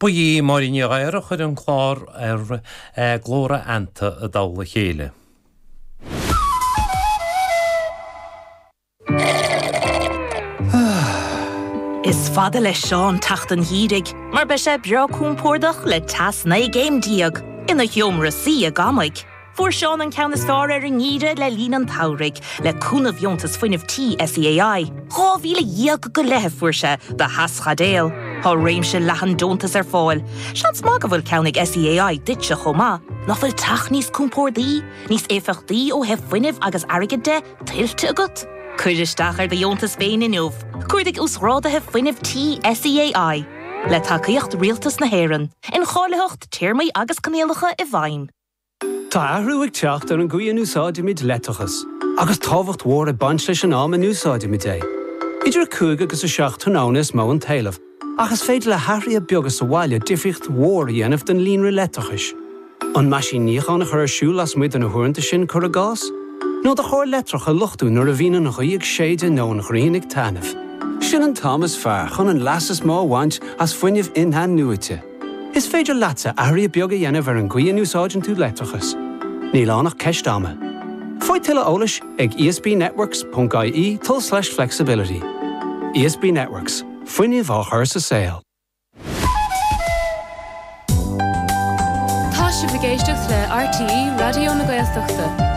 Ba í Máirín Ní Ghadhra a chuir an clár Ar Glór Anoir i dtoll a chéile. Is fada le Seán teacht an gheimhridh mar beidh sé breá compordach le teas 19 gcéim ina sheomra suí agamaigh. Fuair Seán an ceann is fearr ar an ngeimhreadh le linn an tsamhraidh, le cúnamh dheontas fuinnimh tí SEAI. Dhá mhíle dhéag go leith a fuair sé do theaschaidéal. Tá réimse leathan deontas ar fáil. Seans maith go bhfuil ceann ag SEAI duitse chomh maith. Nach bhfuil teach níos compórdaí, níos éifeachtaí ó thaobh fuinnimh agus airgid de, tuillte agat? Cuir isteach ar do dheontas féin inniu, cuardaigh Uasghráduithe Fuinnimh Tí SEAI, le tacaíocht Rialtas na hÉireann, Incháilitheacht, Téarmaí agus Coinníollacha i bhfeidhm. Tá athrú ag teacht ar an gcaoi a n-úsáidimid leictreachas, agus tábhacht mhór ag baint leis an am a n-úsáidimid é. Idir 5 agus 7 tráthnóna is mó an t-éileamh, ach is féidir le hathruithe beaga sa bhaile difríocht mhór a dhéanamh don líonra leictreachais. An meaisín níocháin a chur ar siúl lasmuigh de na huaireanta sin, cuir i gcás? Nó do charr leictreach a luchtú nuair a bhíonn an ghaoth ag séideadh nó an ghrian ag taitneamh? Sin an t-am is fearr chun an leas is mó a bhaint as fuinneamh in-athnuaite. Is féidir leatsa athruithe beaga a dhéanamh ar an gcaoi a n-úsáideann tú leictreachas, níl ann ach ceist ama. Faigh tuilleadh eolais ag esbnetworks.ie tul/flexibility. ESB Networks, fuinneamh á chur sa saol. Tá sibh ag éisteacht le RTÉ Raidió na Gaeltachta.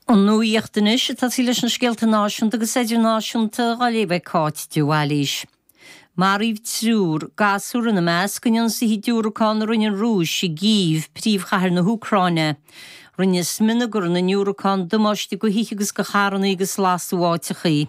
An nuacht anois ag tosaí leis na scéalta náisiúnta agus idirnáisiúnta dhá léamh ag Cáit de Bhailís. Maraíodh triúr, gasúr ina measc, in ionsaithe diúracán a rinne an Rúis i gCív, príomhchathair na hÚcráine. Rinne smionagar na ndiúracán damáiste do thithe agus do charranna agus lasadh áiteachaí.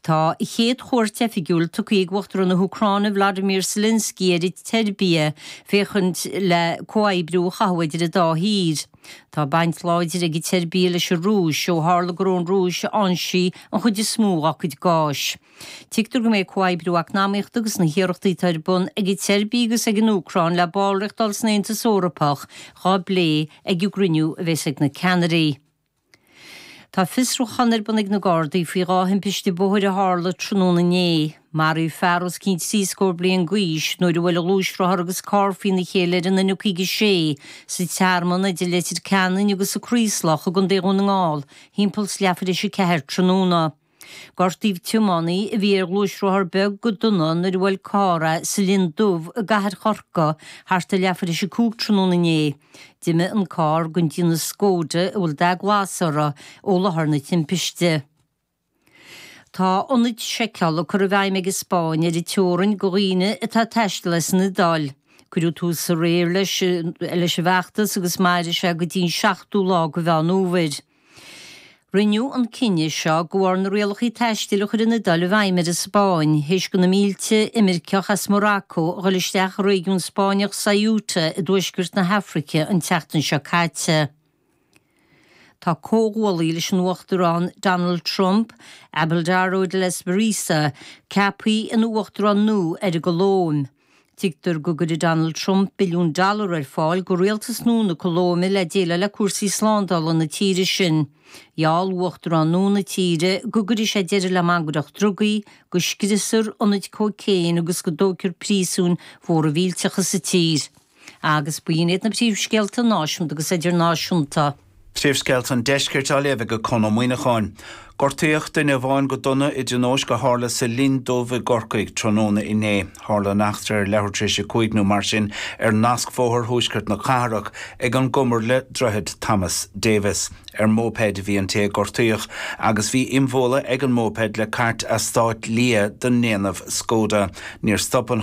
Tá a chéad chuairt oifigiúil tugtha ag Uachtarán na hÚcráine Volodymyr Zelensky ar an tSeirbia féachaint le comhoibriú a chothú idir an dá thír. Tá baint láidir ag an tSeirbia leis an Rúis, ó tharla gur ón Rúis a fhoinsíonn sí an chuid is mó dá cuid gáis. Tuigtear go mbeidh comhoibriú eacnamaíochta agus na hiarrachtaí atá ar bun ag an tSeirbia agus ag an Úcráin le ballraíocht a fháil san Aontas Eorpach dhá bplé ag an gcruinniú a bheas ag na ceannairí Tá fiosrúchán ar bun ag na Gardaí faoi dhá thimpiste bóthair a tharla tráthnóna inné. Maraíodh fear os cionn trí scór bliain d'aois nuair a bhuail gluaisrothar agus carr faoina chéile ar an N56 sa Tearmann idir Leitir Ceanainn agus an Craoslach i gContae Dhún na nGall, thimpeall 's leathuair th'éis a 4 tráthnóna. Gortaíodh tiománaí a bhí ar ghluaisrothar beag go dona nuair a bhuail carr é sa Linn Dubh i gcathair Chorcaí thart ar leathuair théis a cúig tráthnóna inné. D'imigh an carr den déanamh Skoda a bhfuil dath glas air ó láthair na timpiste. Tá ionaid seiceála curtha i bhfeidhm ag an Spáinn ar an teorainn do dhaoine atá ag taisteal as an Iodáil. Cuireadh tús aréir leis an bhfeachtas agus mairfidh sé go dtí an seachtú lá de Mheán Fhómhair. Rinneadh an cinneadh seo go bharr na rialacha taistil a chuir an Iodáil i bhfeidhm ar an Spáinn théis go na mílte imirceach as Morocco a ghoil isteach i réigiún Spáinneach Ceuta i dtuaisceart na hAfraice an tseachtain seo caite. Tá comhghuaillí leis an Uachtarán Donald Trump, Abelardo de la Espriella, ceapthaí ina Uachtarán nua ar an gColóim. Tuigtear go gcuirfidh Donald Trump billiún dollar ar fáil go rialtas nua na Colóime le déileáil le cúrsaí slándála na tíre sin. Gheall uachtarán nua na tíre go gcuirfidh sé deireadh le mangaireacht drugaí, go scriosfar ionaid cóicéin agus go dtógfar príosúin mhóra mhíllteacha sa tír. Agus b'in iad na príomhscéalta náisiúnta agus idirnáisiúnta. Príomhscéalta an Deiscirt á léamh ag Con Ó Muíneacháin. Gortaíodh duine amháin go dona i dtionóisc a tharla sa Linn Dubh i gCorcaigh tráthnóna inné. Tharla an eachtra ar leathuair tar éis a cúig nó mar sin ar nascbhóthar thuaisceart na cathrach, ag an gcumar le Droichead Thomas Davis. Ar mhóipéid a bhí an té a gortaíodh agus bhí imbhualadh ag an móipéad le cairt eastáit liath den ndéanamh Skoda. Níor stop an.